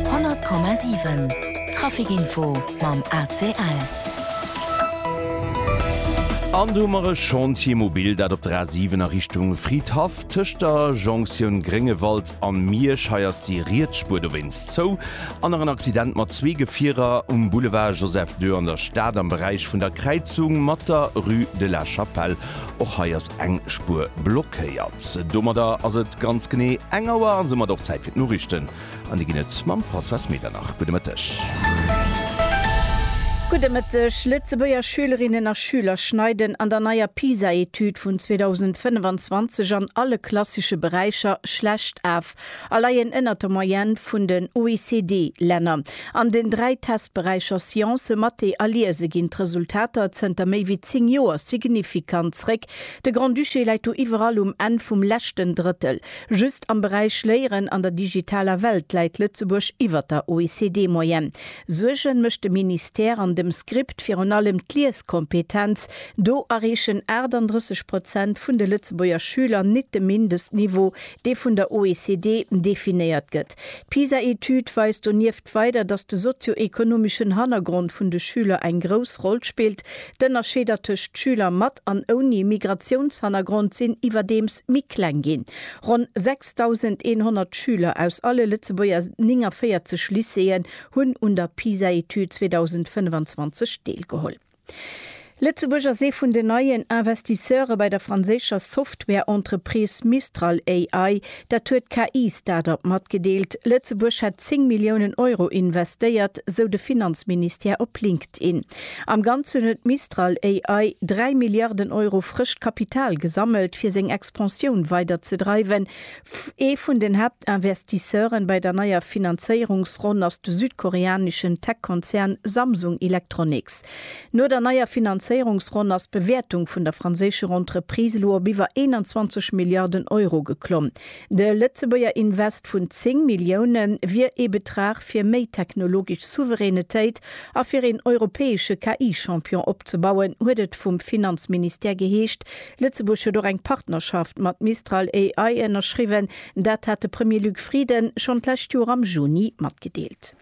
100,7 Trafic Info mam ACL. An do hu mer e Chantier mobil, dat op der A 7 a Richtung Fridhaff tëscht der Jonktioun Gréngewald an Miersch. Hei ass déi riets Spuer dowéinst zou. An nach en Accident mat zwee Gefierer um Boulevard Joseph Deux an der Stad am Beräich vun der Kräizung mat der Rue de la Chapelle. Och hei ass eng Spuer blockéiert. Domadder ass et ganz genee eng Auer an soumat och Zäit fir d'Noriichten. An déi ginn et mam Françoise Medernach. Gudde Mëtteg. Gudde Mëtteg. Lëtzebuerger Schülerinnen a Schüler schneiden an der neier PISA-Etüd vun 2025 an alle klassesche Beräicher schlecht af a leien ënnert der Moyenne vun den OECD-Länner. An den dräi Testberäicher Science, Mathé a Liese ginn d'Resultater zënter méi wéi zéng Joer signifikant zréck. De Grand-Duché läit do iwwerall um Enn vum leschten Drëttel. Just am Beräich Léieren an der digitaler Welt läit Lëtzebuerg iwwer der OECD-Moyenne. Suerge mécht de Ministère an dem Script virun allem d'Lieskompetenz. Do erreechen 38 Prozent vun de Lëtzebuerger Schüler nit de Mindestniveau, dee vun der OECD definéiert gëtt. D'PISA-Etüd weist donieft weider, datt de sozio-ekonomeschen Hannergrond vun de Schüler eng grouss Roll spillt. D'Ënnerscheeder tëscht Schüler mat an ouni Migratiounshannergrond sinn iwwerdeems méi kleng ginn. Ronn 6.100 Schüler aus alle Lëtzebuerger 49 Lycéeën hunn un der PISA-Etüd 2025 deelgeholl. Lëtzebuerg ass ee vun den neien Investisseure bei der franséischer Software-Entreprise Mistral AI. Dat huet d'KI-Start-up matgedeelt. Lëtzebuerg hätt 10 Milliounen Euro investéiert, sou de Finanzministère op LinkedIn. Am Ganzen huet Mistral AI 3 Milliarden Euro frëscht Kapital gesammelt, fir seng Expansioun weiderzedreiwen. Ee vun den Haaptinvestisseuren bei der neier Finanzéierungsronn ass de südkoreaneschen Tech-Konzern Samsung Electronics. No der neier Finanzéierungsronn ass d'Bewäertung vun der franséischer Entreprise elo op iwwer 21 Milliarden Euro geklomm. De Lëtzebuerger Invest vun 10 Millioune wier ee Betrag fir méi technologesch Souveränetéit a fir een europäesche KI-Champion opzebauen, huet et vum Finanzministère geheescht. Lëtzebuerg huet och eng Partnerschaft mat Mistral AI ënnerschriwwen. Dat hat de Premier Luc Frieden schonn d'lescht Joer am Juni matgedeelt.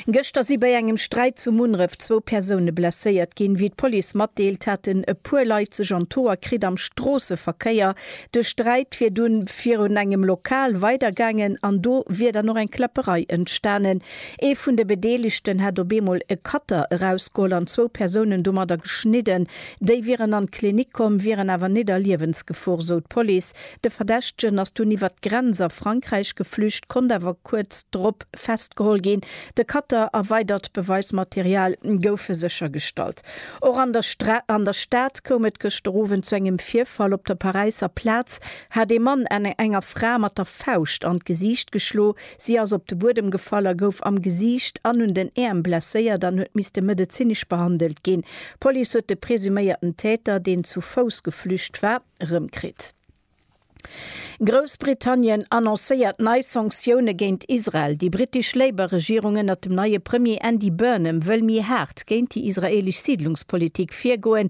Gëschter si bei engem Sträit zu Munneref zwou Persoune blesséiert ginn. Wéi d'Police matdeelt, haten e puer Leit sech an d'Hoer kritt am Stroosseverkéier. De Sträit wier dunn virun engem Lokal weider gaangen an do wier dann och eng Kläpperei entstanen. Ee vun de Bedeelegten hätt op eemol e Cutter erausgeholl an zwou Persounen domadder geschnidden. Déi wieren an d'Klinik komm, wieren awer nit a Liewensgefor, sou d'Police. De Verdächtegen ass dunn iwwert d'Grenz a Frankräich geflücht, konnt awer kuerz drop festgeholl ginn. De Cutter a weidert Beweismaterial goufe séchergestallt. Och an der an der Stad koum et gëschter Owend zu engem Virfall. Op der Paräisser Plaz hat ee Mann enger Fra mat der Fauscht an d'Gesiicht geschloe. Si ass op de Buedem gefall a gouf am Gesiicht an un den Äerm blesséiert an huet misste medezinesch behandelt ginn. D'Police huet de presuméierten Täter, deen zu Fouss geflücht war, erëmkritt. Groussbritannien annoncéiert nei Sanktioune géint Israel. Déi brittesch Labour-Regierung ënnert dem neie Premier Andy Burnham wëll méi haart géint déi israeelesch Siidlungspolitik virgoen.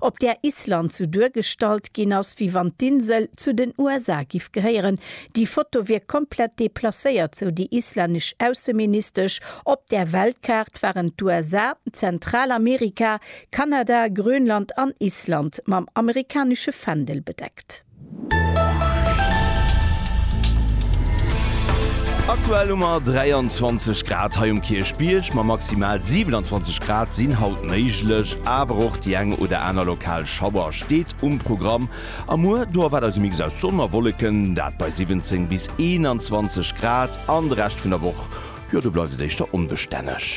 op där Island sou duergestallt ginn ass, wéi wann d'Insel zu den USA giff gehéieren. Déi Foto wier komplett deplacéiert, sou déi islännesch Ausseministesch. Op där Weltkaart waren d'USA, Zentralamerika, Kanada, Grönland an Island mam amerikanesche Fändel bedeckt. Aktuell hu mer 23 Grad hei um Kierchbierg, ma maximal 27 Grad sinn haut méiglech. Awer och déi eng oder aner lokal Schauer steet um Programm. A muer, do erwaart eis e Mix aus Sonn a Wolleken, dat bei 17 bis 21 Grad. An de Rescht vun der Woch, jo do bleift et éischter onbestänneg.